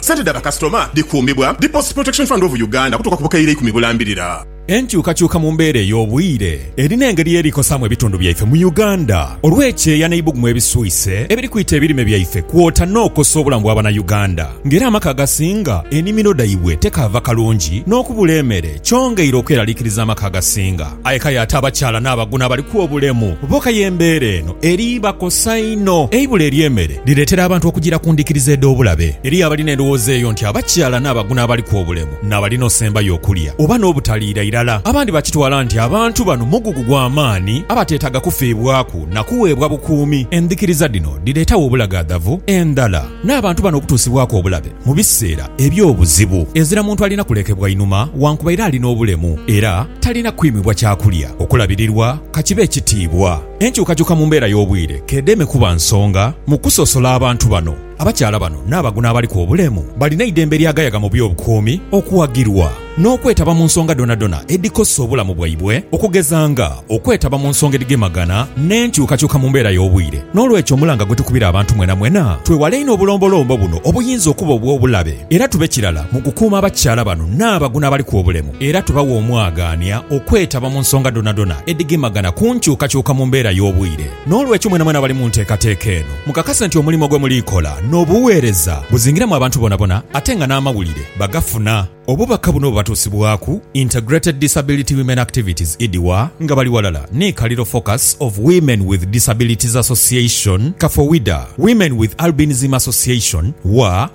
Sente dha bakasitoma dhikuumibwa Deposit Protection Fund of Uganda okutuuka ku bukaire eikumi bulambirira. Enkyukakyuka mu mbeera ey'obwire erina engeri y'eri kosaamu ebitundu byaife mu Uganda olw'ekyeya n'eibugumu ebiswise ebiri kwita ebirime byaife kwota n'okosa obulamu bwa Banauganda nga era amaka agasinga enimiro dhaibwe tekaava kalungi n'okubula emere kyongeire okweraliikiriza amaka agasinga Aye k'aye ate abakyala n'abaguno abaliku obulemu bo k'aye embeera eno eribakosa inho. Eibula ery'emere lireetera abantu okujiira ku ndhikiriza edh'obulabe. Eriyo abalina endhowooza eyo nti abakyala n'abaguno abaliku obulemu n'abalina osembayo okulya oba n'obutaliira irala. Abandi bakitwala nti abantu bano mugugu gwa maani abateetaaga kufiibwaku na kuweebwa bukuumi. Endhikiriza dhino dhireetagho obulagaadhavu endhala n'abantu bano okutuusibwaku obulabe mu biseera eby'obuzibu. Ezira muntu alina kulekebwa inhuma wankubaire ali n'obulemu era. Talina kwimibwa kya kulya, okulabirirwa, ka kibe ekitiibwa. Enkyukakyuka mu mbeera y'obwire k'edeme kuba nsonga mu kusosola abantu bano. Abakyala bano n'abagu n'abaliku obulemu balina eidembe eryagayaga mu by'obukuumi okuwagirwa n'okwetaba mu nsonga dhonadhona edhikosa obulamu bwaibwe okugeza nga okwetaba mu nsonga edhigemagana n'enkyukakyuka mu mbeera y'obwire. N'olwekyo omulanga gwe tukubira abantu mwenamwena twewale inho obulombolombo buno obuyinza okuba obw'obulabe era tube kirala mu kukuuma abakyala bano n'abagu n'abaliku obulemu. era tubawa omwagaania okwetaba mu nsonga dhonadhona edhigemagana ku nkyukakyuka mu mbeera y'obwire. N'olwekyo mwenamwena abali mu nteekateeka eno, mukakase nti omulimo gwe muli kola n'obuweereza buzingiramu abantu bonabona ate nga n'amawulire bagafuna. Obubaka buno bubatuusibwaku Integrated Disability Women Activities, IDWA, nga bali ghalala ni Kaliro Focus of Women with Disabilities Association, Kafowida, Women with Albinism Association, WWAA,